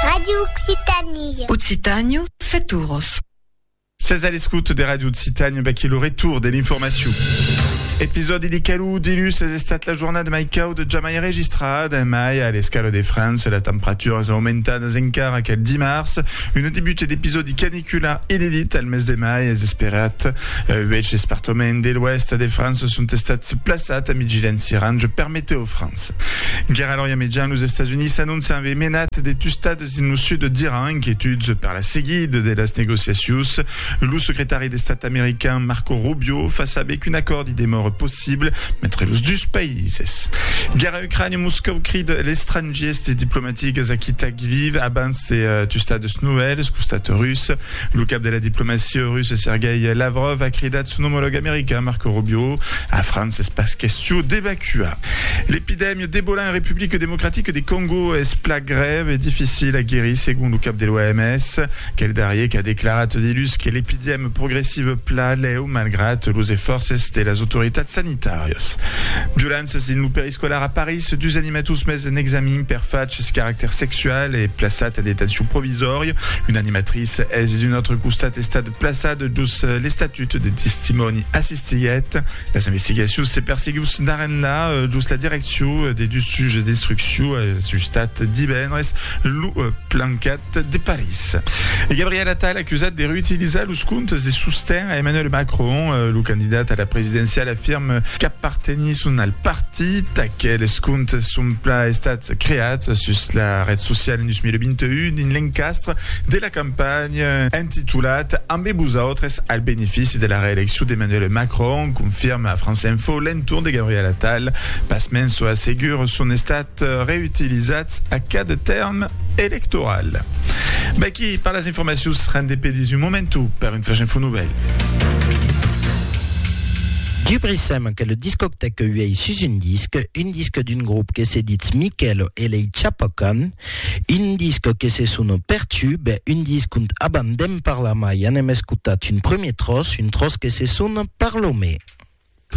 Radio Occitanie. Occitània, set oros. Sètz a l'escouta de Radio Occitània, vaquí lo retour de l'informacion. Episòdi de calor dilús es estat la jornada mai cauda jamai registrada, mai a l'escala de França, las temperaturas aumentadas encara qu'el dimars, una debuta d'episòdi Qu'una inedita al mes de mai es esperat. Uèch espartoments de l'Oèst de França son estats plaçats amb vigilància orange per metèo França. Guèra lor iamejan los Estats Units anoncian aver menat de tustadas dins lo sud d'Iran, inquietuds per la seguida de las negociacions. Lo secretari d'Estat american Marco Rubio fa saber qu'un acòrdi demòra possible entre los dus païses. Ucraïna, Moscòu crida l'estrangiers de diplomatics aquí tà Lviv abans de tustar deus novèls costat rus. Lo cap de la diplomacia russa Sergei Lavrov a cridat son omològ american Marco Rubio a França es pas question d'evacuar. L'epidèmia d'Ebola en Republica Democratica de Còngo es plan grèu e dificil a guerir segon lo cap de l'OMS. Aquel darrier qu'a declarat diluns que l'epidèmia progressiva plan lèu malgrat los esfòrces de las autoritats sanitàrias. Tàrias. Durant ses dins lo periscolar a París, dus animators mes en examin per fachs caractèr sexual e plaçat en detencion provisòria. Una animatrice es d'un autre costat estat plaçat jos l'estatut de testimòni assistiguèt. Las investigacions se perseguius d'arrenlà jos la direccion de dus juges d'instruccion ajustat divendres lo plancat. Art de París. E Gabriel Attal acusat de reutilizar los comptes de sosten a Emmanuel Macron. Lo candidat a la presidenciala afirme qu'apartenisson al partit. Aqueles comptes son plan estats creats sus la ret sociala en 2021 dins l'encastre de la campanha entitulat Ambe vosautres al benefici de la reeleccion d'Emmanuel Macron, confirma a France Info l'entorn de Gabriel Attal. Pasmens, çò assegur son estat. reutilizats a cada tèrm electoral. V'aquí per las informacions, rendez-pe dins un momentu per un flash info novèl. Dubrissèm que lo discòctèc que uèi sus un disc, un disc d'un grop que se ditz Michèlo e lei Chapocan, un disc que se sona Pertube, un disc ont abans d'en parlar mai anem escotat un premier tròç, un tròç que se sona Parlo-me.